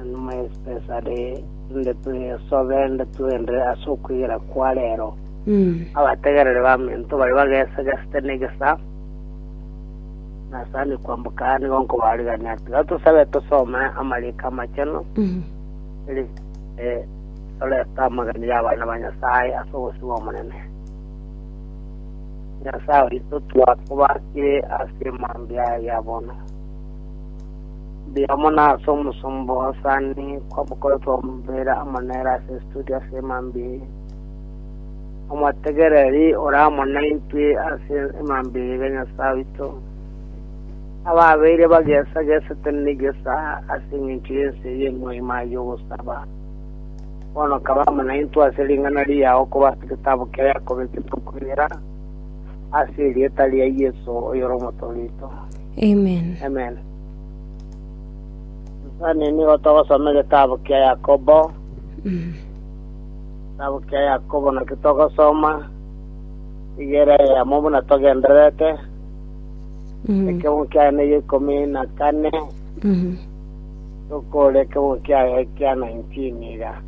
Enuma ye Sipesare, inde twesobe, inde twenderere ase okwegera kwa reero. Abategereri b'amento baria bagesagesete negesa, na sani kwamboka aya nigo nkobarigania. Tiga tosabe tosome amariko amachenu, eri eh, torete amagena y'abana ba Nyasaye ase obosio bw'Omonene. Nyasaye oito twakobakire ase mambia ya bono. Mbuya amo na ase omosomba osaani kw'abakori twamobera amo nere ase estudio ase emambia eye. Omotegereri ore amo naintwe ase emambia eye Nyasae oito, ababeire bagesagesete negesa ase engencho y'ense eye emoima y'ogosaba. Bono kaba amo naintwe ase ring'ana riao koba ase getaabo kia Yakobo egetokweera, ase erieta ria Yeso oyore Omotoorito. Amen. Amen. Sani nigo togosoma egetabu kia Yakobo. Mm. Getabu kia Yakobo nakio togosoma igere yamo buna togendererete. Mm. Ekebungu kiaye neye ikumi na kane Mm. tokore ekebungu kiaye kia 19 iga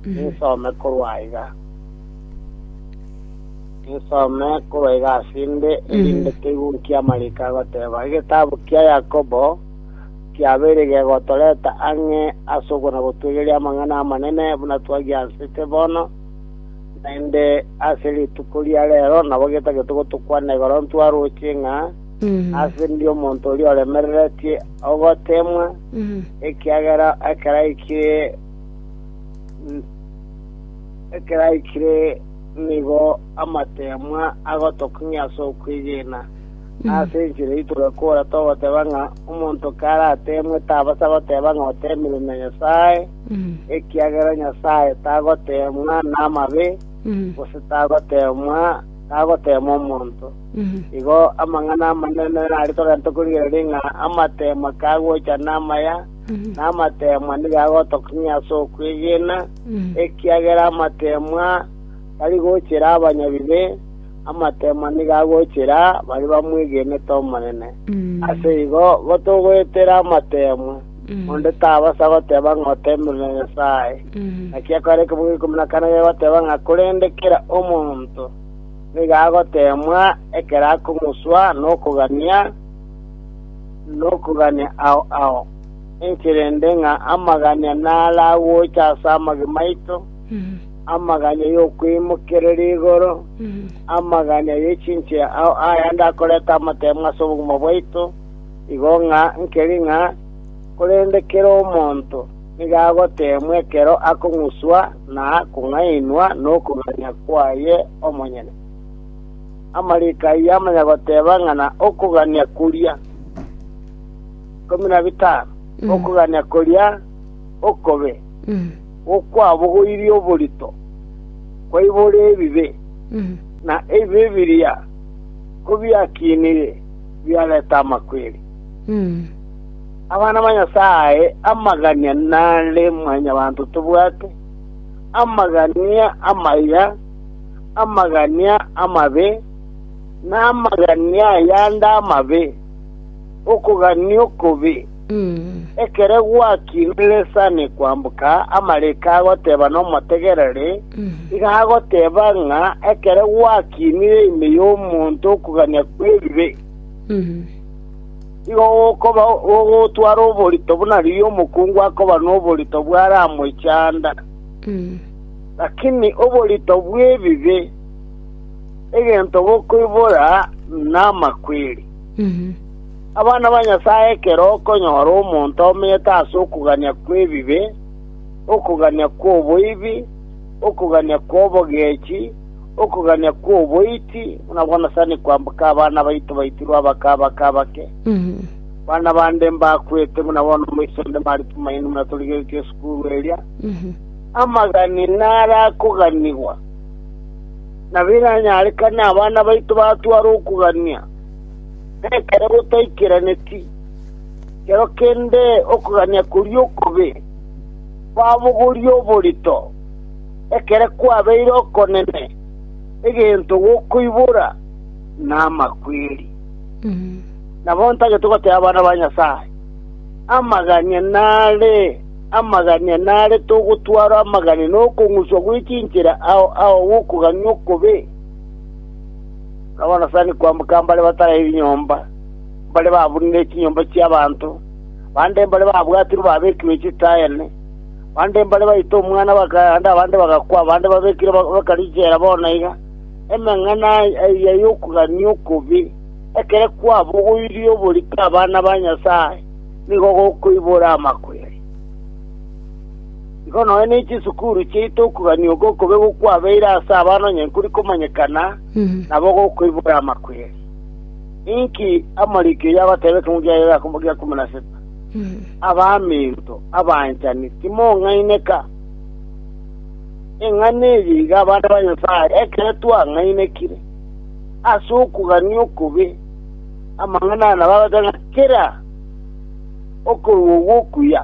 Mm. nisome korwa iga Insome korwa iga ase inde, erinde keigwe nki amariiko agoteba. Egetabu kia Yakobo kiabeire gegotoreta ang'e ase okonagotwegeria amang'ana amanene buna twagiansete bono, naende ase rituko ria reero nabo getagete gotokwana igoro ntwaroche ng'a ase ndi omonto oria oremereretie ogoteemwa, ekiagera ekero aikire ekero aikire Nigo amateemwa agotokong'ia ase okwegena, na ase enchera eyio togakora togoteba ng'a omonto karateemwe tabasa goteba ng'a oteemirwe na Nyasae, ekiagera Nyasae tagoteemwa namabe, gose tagoteemwa tagoteema omonto. Igo amang'ana amanene aria togachete korigereria ng'a amateemwa kagocha namaya, na amateemwa nigo agotokong'ia ase okwegena, ekiagera amateemwa tari gochera abanyabibe, amateemwa nigo agochera baria bamwegenete Omonene. Ase igo gotogoetera amateemwa, onde tabasa goteba ng'a oteemerwe Nyasae. Naki ekero ekemogo kia ikomi na kane gegoteba ng'a korende kera omonto nigo agoteemwa ekero akong'uswa nokogania nokogania ao ao. Ninki rende ng'a amaganya naragocha ase amagima aito, amaganya y'okweimokereria igoro, amaganya ye chinchera ao ayande akoreta amatemo ase obogima bwaito, igo ng'a nkeri ng'a korende kera omonto nigo agoteemwa ekero akong'uswa na kong'ainwa nokogania kwaye omonyene. Amariko ayio amanya goteba ng'a na okogania koria. ikomi na bitano, okogania koria okobe gokwabogoirie oborito kwaibora ebibe, na ebibe biria kobiakinire biareta amakweri. Abana ba Nyasae amagania nare mwanyabanto tobwate, amagania amaya, amagania amabe, na amagania ayande amabe. okogania okobe. Ekero gwakinire resani kwamboka, amariko agoteba nomotegereri, iga agoteba ng'a ekero gwakinire ime y'omonto okogania kw'ebibe, igo gokoba gogotwara oborito buna riria omokungu akoba noborito bw'aramochanda, lakini oborito bw'ebibe, egento bokoibora namakweri. Abana ba Nyasae ekero okonyora omonto omete ase okogania kw'ebibe, okogania kw'oboibi, okogania kw'obogechi, okogania kw'oboiti, buna bono sani kwamboka abana baito baitirwe abake abake abake, abana bande mbakwete buna bono moiso onde Mari Tumaini buna torigeretie esukuru eria, amagani narakoganigwa, na biranyarekane abana baito batware okogania. Ekero gotaikeraneti, kero kende okogania koria okobe kwabogoria oborito, ekere kwabeire okonene, egento gokoibora namakweri. Nabo ntagete goteba abana ba Nyasae, Amagania nare, amagania nare togotwara amagania nokong'uswa gwe chinchera ao ao gokogania okobe. Nabarosani kwamboka mbare batare ebinyomba, mbare babunire chinyomba chi'abanto, bande mbare babwatirwe babekirwe chitaene, bande mbare baito omwana bakagenda, abande bagakwa, abande babekirwe baka richera bono iga. Emeng'ana eyio y'okogania okobe, ekero kwabogoirie oborito abana ba Nyasae, nigo gokoibora amakweri. Igo nonya ne chisukuru chiaito okogania oko okobe gokwabeire ase abana onye nkori komanyekana, nabo gokoibora amakweri. Ninki amariko oyio agoteba ekemo gia Yakobo gia ikomi na seta? Abaminto abanchani, timong'aineka. Eng'ana eye iga abana ba Nyasae, ekero twang'ainekire ase okogania okobe, amang'ana aya nabo agoteba ng'a kera okorua ogwo okuya.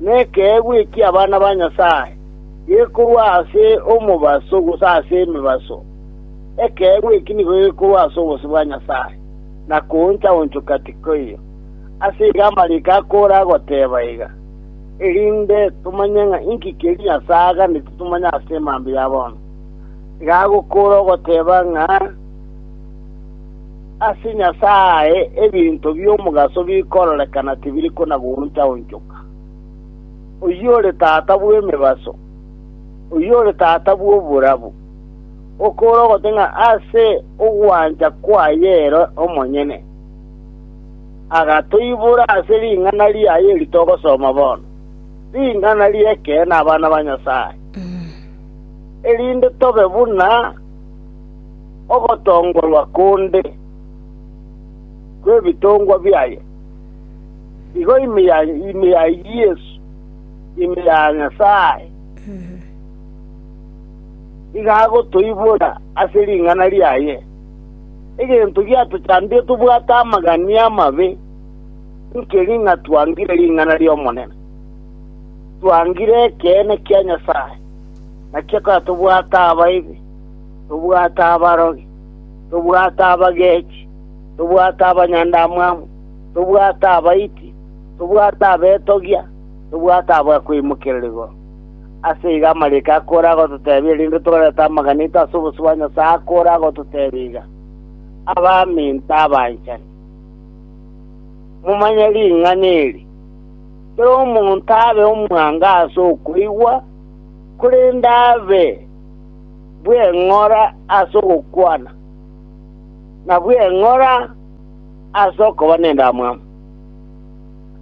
nekeegwa eki'abana ba Nyasae, gekorwa ase omobaso gose ase emebaso. Ekeegwa eki nigo gekorwa ase obosio bwa Nyasae, na kooncha-onchoka tikoiyo. Ase igo amariiko akore agoteeba iga, Erinde tomanye ng'a inki keria Nyasae aganeti tomanye ase emambia ya bono, nigo agokoora ogoteeba ng'a, Ase Nyasae ebinto bi'omogaso bikororekana tibiri kona-gooncha-onchoka. Oyore tata bw'emebaso, oyore tata bw'oborabu, okoore ogote ng'a ase ogwancha kwaye ere omonyene agatoibora ase ring'ana riaye eri togosoma bono, ring'ana ri'ekeene abana ba Nyasae, erinde tobe buna. ogotongorwa konde kw'ebitongwa biaye, igo ime ya ime ya Yesu, ime ya Nyasae, nigo agotoibora ase ring'ana riaye. Egento giatochandire tobwate amagani amabe, nkeri ng'a twangire ring'ana ri'Omonene, twangire ekeene kia Nyasae, nakio ekora tobwate abaibi. tobwate abarogi, tobwate abagechi, tobwate abanyandamwamu, tobwate abaiti, tobwate abetogia, tobwate abakwimokerera igoro. Ase igo amariiko akore agototebia, erinde torete amagana aito ase obosio bwa Nyasae, akore agototebia iga, Abaminto abanchani, momanye ring'ana eri, Kera omonto abe omwango ase okoigwa, korende abe bw'eng'ora as'ogokwana, na bw'eng'ora as'okoba nendamwamu.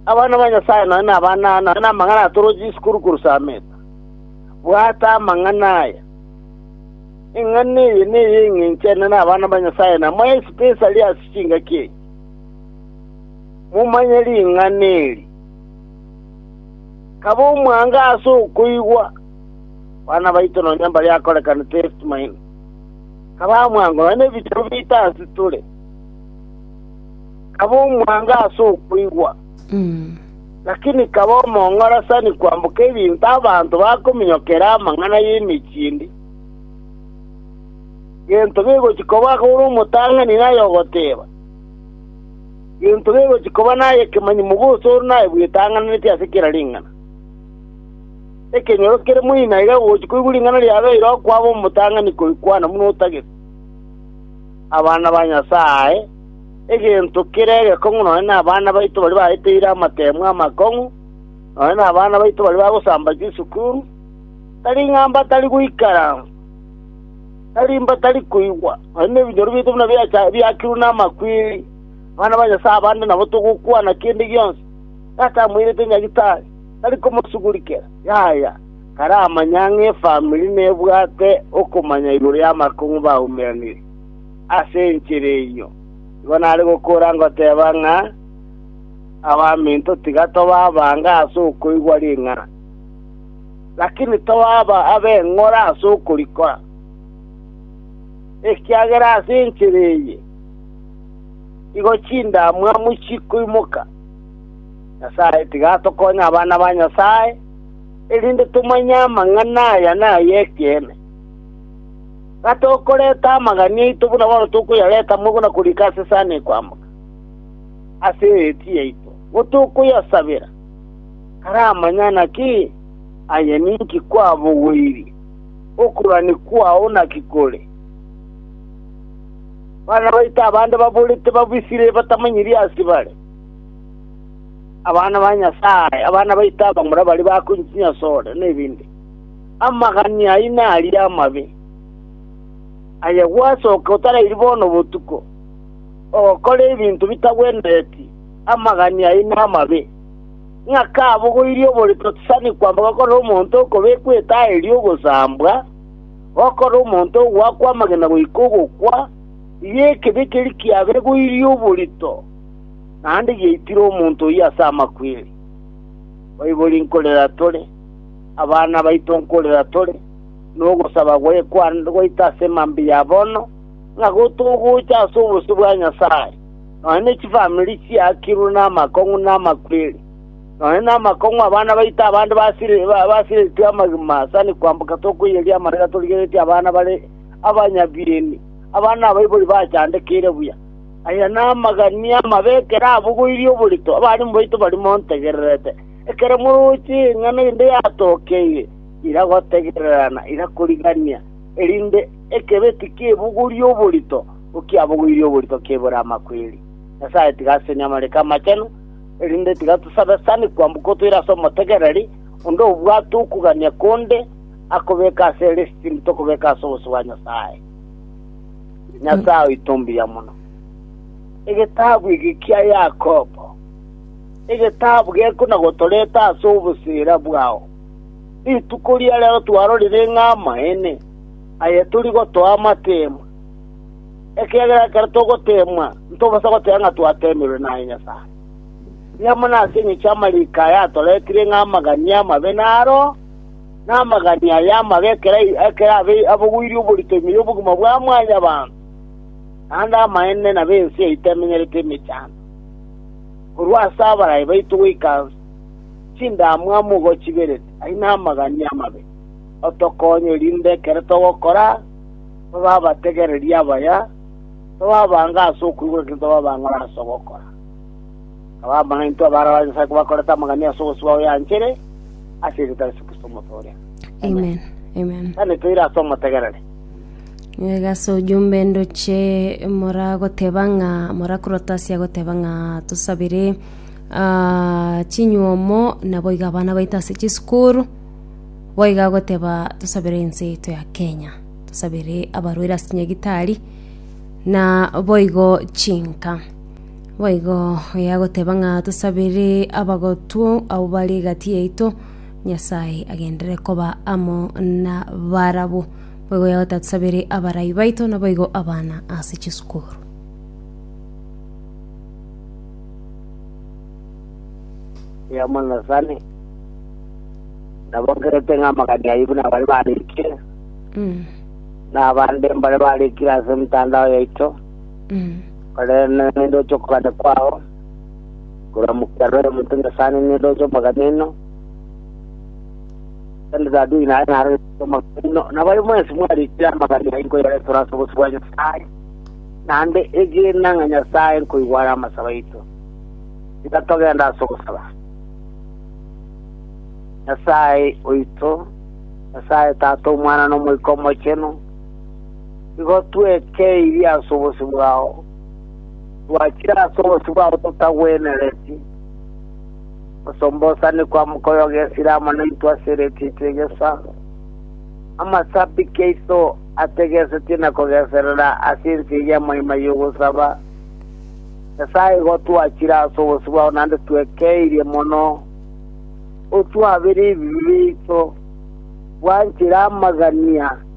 Abana ba Nyasaye nonya nabana nonya namang'ana atoroche isukuru korwa Sameta. Bwata amang'ana aya. Eng'ana eye neye eng'encho ene nabana ba Nyasaye na moe especially ase chingaki enye. Momanye ring'ana eri. Kaba omwango as'okoigwa, Bana baito nonya mbaria akorekana Testmine, kaba omwango nonya nebitabu biaito ase tore, kaba omwango ase okoigwa, lakini kaba omong'orasani kwamboka ebinto abanto bakominyokera amang'ana y'emechie ende. Gento gegochia koba akore omotang'ani naye ogoteba, gento gegochia koba naye ekemanyi mogosori naye bwetang'ananeti ase kera ring'ana. Ekenyoro kere moino aiga gochi koigwa ring'ana riabeire okwabo omotang'ani koikwana buna otagete abana ba Nyasae, egento kere egekong'u nonya nabana baito baria baeteire amateemwa amakong'u, nonya nabana baito baria bagosamba chisukuru, tari ng'a mbatari goikara, tari mbatari koigwa, nonya nebinyoro biaito buna biacha biakirwe namakweri. Abana ba Nyasae abande nabo togokwana kende gionsi, Tata amoirete Nyagetari. tari komosugurikera, yaya, taramanya ng'a efamiri nebwate okomanya igoro y'amakong'u baumeranire. Ase enchera eyio nigo nare gokora ngoteba ng'a abaminto tiga toba abange ase okoigwa ring'ana, lakini tobaba ab'eng'ora ase okorikora, ekiagera ase enchera eye igo chindamwamu chikoimoka. Nyasae, tiga atokonye abana ba Nyasae, erinde tomanye amang'ana aya nay'ekeene. Gatokoreta amagani aito buna bono tokoyareta moigwa na korika ase sana ekoamoka, ase eeti yaito, nigo tokoyasabera, karamanya naki aye ninki kwabogoirie, okorwani kwao naki kore. Bana baito abande baborete babisire batamanyirie ase bare. abana ba Nyasae, abana baito abamura baria bakoinyi chinyasore, na ebende. Amagani aino aria amabe, aye gwasoka otarairi bono botuko, ogokora ebinto bitagwenereti, amagani aino amabe. Ng'ake abogoirie oborito tisani kwamba gokora omonto okobekwa etaa eria ogosambwa, gokora omonto ogoakwa amagena goika ogokwa, iga ekebekeria kiabegoirie oborito. Naende giaitire omonto oyio ase amakweri, baibori nkorera tore, abana baito nkorera tore, na ogosaba gwekwane goita ase mambia ya bono, ng'a gotogocha ase obosio bwa Nyasae, nonya ne chifamiri chiakirwe namakong'u na amakweri, nonya namakong'u abana baito abande basiri- ba- basiritwe amagima sani kwamboka tokoiyeria amariga torigeretie abana bare abanyabieni, abana abaibori bachandekeire buya. Aya namagania amabe ekero abogoirie oborito abarimo baito baria montegererete. Ekero moroche eng'ana ende yatokeire, iragotegererana, irakoriganania, erinde ekebe tikebogoria oborito, ngo ki abogoirie oborito kebore amakweri. Nyasae tiga asenie amariko amachenu, erinde tiga tosabe sani kwamboka otoire ase omotegereri onde obwate okogania konde akobeka ase lisitini tokobeka ase obosio bwa Nyasae. Nyasae oito mbuya mono. Egetabu eke kia Yakobo, egetabu gekuna gotoreta ase obosera bwao, rituko ria rero twarorire ng'a amaene aye tori gotoa amateemwa, ekiagera ekero togoteemwa ntobasa goteba ng'a twateemirwe naye Nyasae. Riamana ase eng'encho y'amariko aya atoretire ng'a amagania amabe naro, Namagani aya amabe ekero ekero abe abogoirie oborito ime y'obogima bwa mwanyabanto, naende amaene nabe ense yaito emenyerete emechando, korwa ase abaraai baito goika chindamwamu ogochiberete. Ayio namagani amabe, otokonye erinde ekero togokora tobe abategereri abaya, tobe abange ase okoigwa, lakini tobe abang'ora ase ogokora. Abamanyainto abare ba Nyasae kobakorete amang'ana ase ogosibwa oyo yanchere ase erieta ria Yeso Kristo Omote oria. Amen. Amen. Tani toire ase omotegereri. Iga ase ojumbe ndoche moragoteba ng'a morakorota ase agoteba ng'a tosabire ah, chinyuomo naboiga abana baito ase chisukuru boiga agoteba tosabire ense yaito ya kenya tosabire abarwaire ase chinyagitari na boigo chinka Boigo oyagoteba ng'a tosabere abagotwo abwo bare egati yaito, Nyasae agenderere koba amo nabarabwo. Boigo oyagoteba tosabere abarai baito, naboigo abana ase chisukuru. yamonasani nabo nkerete ng'a amagani ayio buna abare barikire Mm. na abande mbare barikire ase emitandao yaito Korende nindoche okogania kwao korwa mokero ere omonto Nyasae nindoche omoganeno, korende Daudi naye narorete omoganeno, nabaye mwensi mwarikire amagani ayio nkoyareterwa ase obosio bwa Nyasae, naende egena ng'a Nyasae nkoigwa are amasabo aito. Tiga togende ase ogosaba. Nyasae oito, Nyasae Tata, Omwana, na Omoika Omochenu, Igo twekeeirie ase obosio bwao, twachire ase obosio bwao totagwenereti, osombosani kwa mokoyo gesire amo naintwe ase eritiiti egesa, amasabiki aito ategesetie na kogeserera ase ense eye amoima y'ogosaba. Nyasae, igo twachire ase obosio bwao naende twekeeirie mono, otwabere ebibe biaito, bwanchire amagania,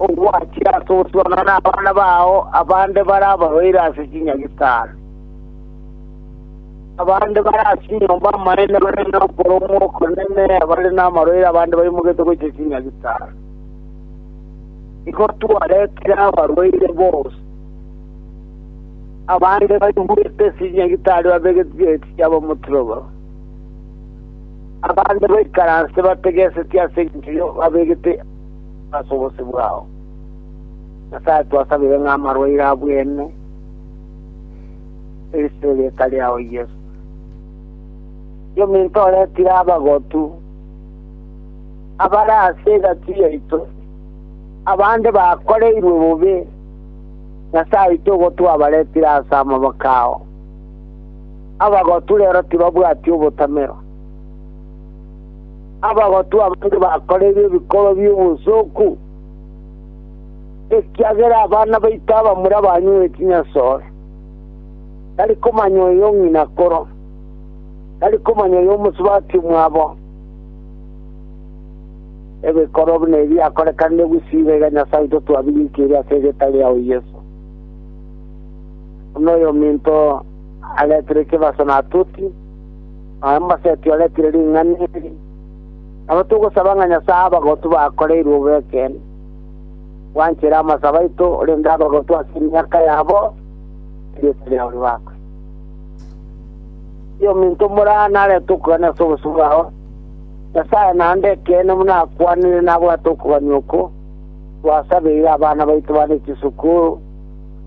ogwachire ase ogosuanana nabana bao abande bare abarwaire ase chinyagitari. Abande bare ase enyomba y'amaene bare nokoromwa okonene, abare namarwaire abande baimogetwe gochia chinyagitari. Igo twaretire abarwaire bonsi, abande baigwete ase chinyagitari babegetwe chiageti chiabo omotiro obo. Abande baikaranse bategesetwe ase enchera eyo babegete ase obosio bwao. Nyasae twasabire ng'a amarwaire abwene ase erieta riao Yeso. Yominto oretire abagotu abare ase egati yaito, abande bakoreirwe bobe, Nyasae oito ogo twabaretire ase amaboko ao. Abagotu rero tibabwati obotamero. Abagotu abande bakoreirwe ebikorwa bi'obosooku, ekiagera abana baito abamura banyuwe chinyasore. Tari komanya oyo ng'ina akoro, tari komanya oyo omosubati omwabo. Ebikorwa buna ebi biakorekanire gusii iga iga Nyasae oito twabirikirie ase egetare yao Yeso, buna oyominto aretire ekebaso na atoti, na oye omosaiti oretire ring'ana eri. Nabo togosaba ng'a Nyasae abagotu bakoreirwe obo ekeene, bwanchere amasabo aito, korende abagotu ase emiaka yabo, erieta riao ribakwe. Eri ominto omoraro narete okogania ase obosio bwao, Nyasae naende ekeene buna akwanire nabwate okogania oko, twasabeire abana baito bane chisukuru,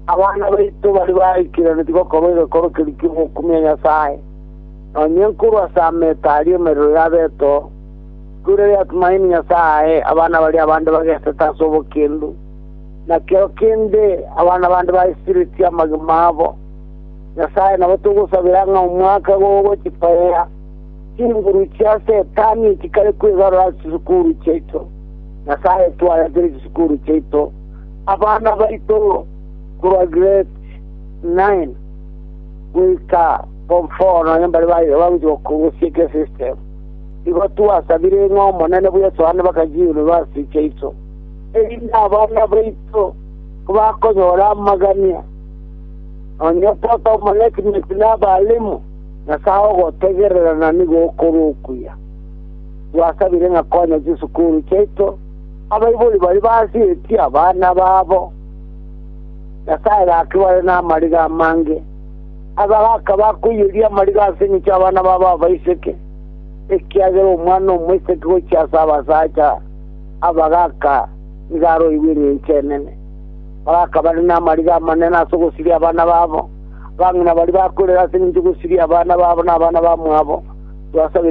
Abana baito baria baikeranetie bakorwa egekoro keria ki'ogokumia Nyasae, nonya enkorwa ase ameto aria emerero y'abeto, korwa erio Atumaini Nyasae ae abana baria abande bagesete ase obokendu, na kero kende abana bande baisiretie amagima abo. Nyasae nabo togosabera ng'a omwaka gogochitogia chinguru chia Setani echikare kwegarora ase chisukuru chiaito, Nyasae twaretere chisukuru chiaito, Abana baito korwa grade nine goika form four nonya mbare bagochia korusia ekia system, igo twasabire ng'a Omonene bwe Yeso aane bakachie yunivasiti chiaito, erinde abana baito kobakonyora amagania, nonya Tata o Management na abalimu, Nyasae ogotegerera na nigo okore okuya. Twasabire ng'a konya chisukuru chiaito, Abaibori baria basieti abana babo, Nyasae gakebare namariga amange. Aba gakaba akoiyeria amariga ase engencho y'abana babo abaiseke, ekiagera omwana omoiseke gochia ase abasacha aba gaka nigo aroirwe engencho enene. Bagakabare namariga amanene ase ogosiria abana babo. Abang'ina baria bakorera ase engencho y'ogosiria abana babo na abana bamwabo,